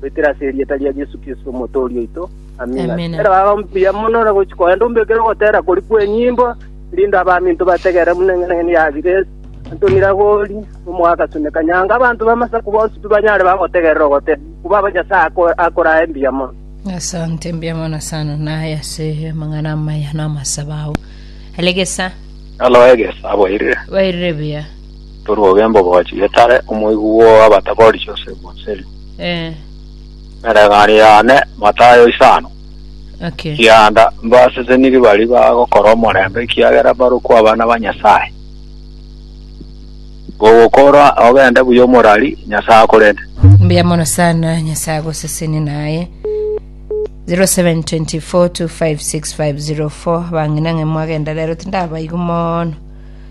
Goetera ase erieta ria Yesu Kristo Omotooria oito. Amina. Amina. Ere baba mbuya mono ore gochi koenda ombekere ogotera kori kw'enyimbo erinde abaminto bategere buna eng'enang'eni ya Grace Antoni Ragori omoa Gasuni Kanyanga abanto b'amasaku bonsi pi banyare bagotegerera ogotera kuba Nyasae ako- akorae mbuya mono. Asante mbia mono sana naye ase amang'ana amaya na amasaba ao. Elegesa Alo egesa aboirire. bairire buya. Toruoge mbogochi etare omoigu bw'abatabori Josefu Onseri, Eh, eregani yane Matayo isano, okay. kianda mbaseseniri baria bagokora omorembe, ekiagera mbarokwo abana ba Nyasae. Gogokora ogende buya omorari, Nyasae akorende. mbuya mono sana nyasaye agoseseni naye 0724256504 bang'ina ng'e mwagenda rero tindabaigu mono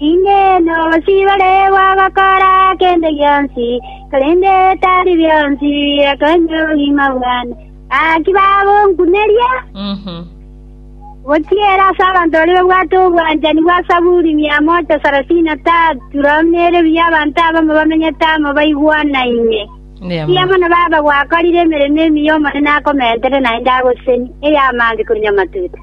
Inee! Nobosie bare bagokora kende gionsi, korende tari bionsi birakonywa obogima bwane? Naki bagonkuneria? Gochiera ase abanto baria babwate obwanchani bwa Saburi mia mocha sarasini na tatu, rora buna ere buya abanto abamo bamenyete amo baigwanaine. Buya mono baba gwakorire emeremo emiya Omonene akomentere naende agosesenie, ey'amaambia korwa nyamatuta.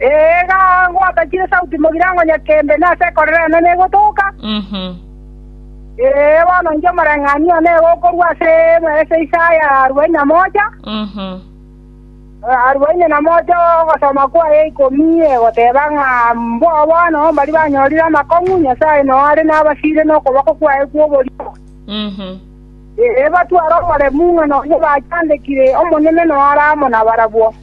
Eega, ngwatakire sauti mogirango nyakembe, na ase ekorero yane negotoka. Ee, bono inche omoreng'anio one iga okorua ase ase Isaya arubaini na mocha, arubaini na mocha ogosoma kwaye ikomi, egoteba ng'a mboo bono mbaria banyorire amakong'u, Nyasae noare nabasiire nokoboko kwaye kw'oborio. Ee, batware omoremu ng'a nonya bachandekire, Omonene noare amo nabarabwo.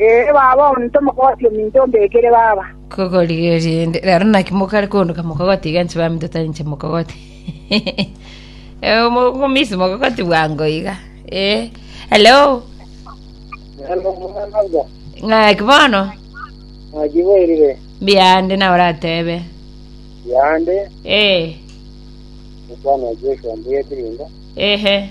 Ee, baba, onde tomokogoti ominto ombekere baba. Kogorigereria inde, rero naki mokare koondoka mokogoti iga inche baminto tari inche mokogoti. Eh, omo- omomisi mokogoti bwango iga. Eh, hello. Ng'aki bono? Najiboirire Mbiande na oratebe. yande Eh, mukwana Joshua mbuya ekirinda ehe.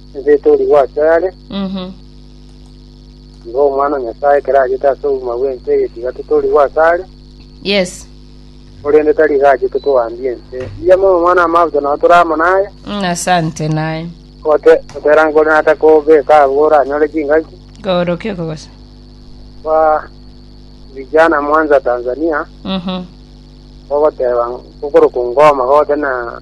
Enseete oria gwachia yare, Mhm. nigo Omwana o Nyasae ekero achete ase obogima bw'ense egetigatete oria gwachia are, Yes. korende tari iga achete koambia ense. Mbuya mono Omwana Amaabito nao tore amo naye, Mm, Asante naye. gote gotera nkore natakobeka abwo oranyore chingaki. Koorokia okogosa. Kwa vijana Mwanza Tanzania, Mhm. ogoteba kokoroka ngoma gote na